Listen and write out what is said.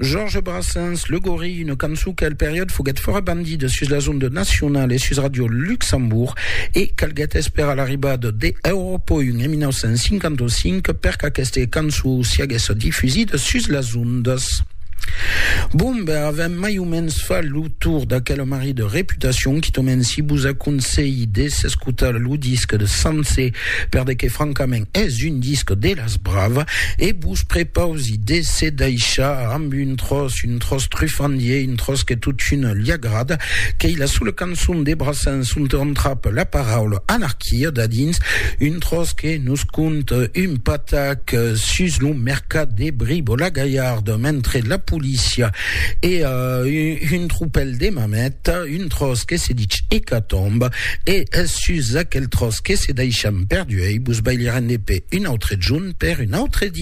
Georges Brassens, Le Gorille, una cançon qu'el periòd foguèt fòra bandida sus las ondas nacionalas e sus Radio Luxembourg e calguèt esperar l'arribada de Europe 1 en 1955 per qu'aqueste cançon siaguèsse difusida sus las ondas. Bon, ben, avèm mai o mens fach lo tour d'aquela marri de reputacion, quitament si vos aconselhi de s'escotar lo disc de Sanse, per de que francament es un disc de las brava, e vos prepausi de se daishar amb un tròç, un tròç trufandier, un tròç que totun li agrada, qu'ei la sola cançon de Brassens ont on trap la paraula anarquia dadins, un tròç que nos cont un patac sus lo mercat de Bribo-la-Gaillarde mentre la polícia e un tropèl de mamèt, un tròç que se dich Ecatombe, e es sus aquel tròç que se daishan perduei, vos bailirem de pè un autre jorn per un autre dia.